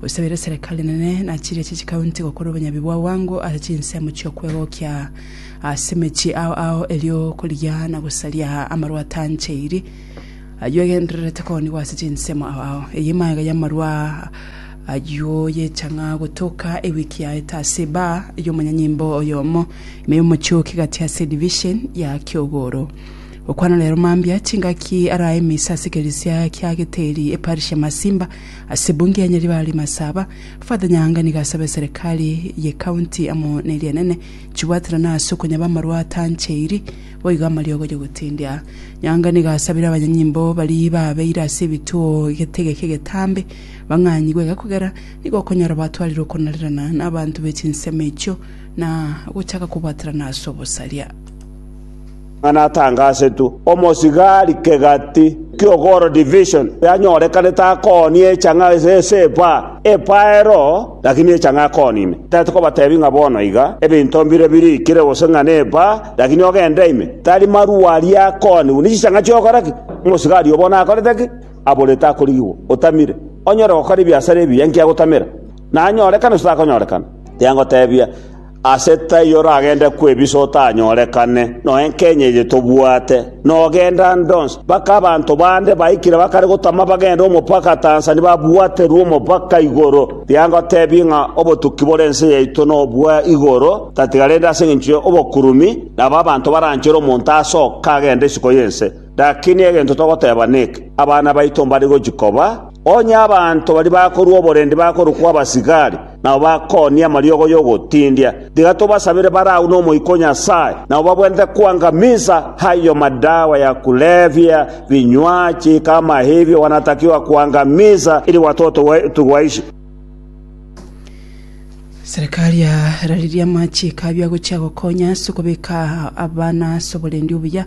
Gosabera eserekari enene na chiria chie chikaunti gokora obonyabi bwa bwango ase chinsemo chi'okwegokia ase emechie ao ao erio korigia na gosaria amarwa atancheiri ayio agendererete koonigwa ase chinsemo ao ao. Eye emagega y'amarwa ayio y'echang'a gotoka ewiki yaete ase ebaa y'omonyanyimbo oyomo ime y'omochooki gati ase edivision ya Kiogoro. Gokwana rero mambia chingaki arae emisa ase ekeresia kia Geteri, eparish ya Masimba, Ase bungi ya nyaribari masaba, Father Nyaanga nigo asaba eserekari ye county amo ne rienene chibwaterane ase okonyaba amarwate ancheiri boigo amariogo yogotindia. Nyaanga nigo asabire abanyanyimbo baria baabeire ase ebituo getegeke getambe bang'anyigwe iga kogera nigo okonyora batwarire okonarerana na abanto be chinsemo echio na gochaka kobwaterana ase obosaria. ng'a natangasetwe omosigari kegati ki'ogoro division yanyorekanete akoonie echa ng'a ase epa epa ero, lakini echa ng'a akoonie ime. Tari kobatebi ng'a bono iga ebinto mbire birikire gose ng'a nepa, lakini ogende ime. Tari marua aria akoonigwe ne chichang'a chi'ogokora ki? Omosigari obo bono akorete ki? Aborete akorigigwa. Otamire. Onyore gokora ebiasara ebiya inki agotamera? Nanyorekane gose takonyorekana? Tengotebia. Ase taiyo oragende kwebisa otanyorekane, noe enkeny'e eye tobwate, nogenda ndonsi, mpaka abanto bande baikire bakare gotama bagende omopaka Tanzania babwaterwe omopaka igoro. Tiga ngotebie ng'a obotuki bore ense yaito nobwa igoro, tatiga rende ase engencho y'obokurumi, nabo abanto baranchere omonto ase oka agende isiko y'ense. Lakini egento togoteeba neke, abana baito mbare gochia koba, onye abanto baria bakorua oborendi bakorokwa abasigari, nabo bakoonia amariogo y'ogotindia. Tiga tobasabere bare agwo n'Omoika o Nyasae, nabo babwenerete koangamisa ayio madawa ya kulevya, binywachi, kama ebio gwanatakiwa koangamisa, ili gwatotowe tugwaishe. Serikali yararirie amachiko abio agochia gokonya ase okobeka abana ase oborendi obuya.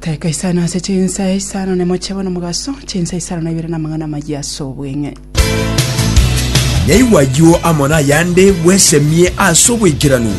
Teka isano ase chinsa isano na emochie bono mogaso, chinsa isano na ibere na amang'ana amayia ase obweng'e. Naigwa ayio amo nayande bwesemie ase oboikeranu.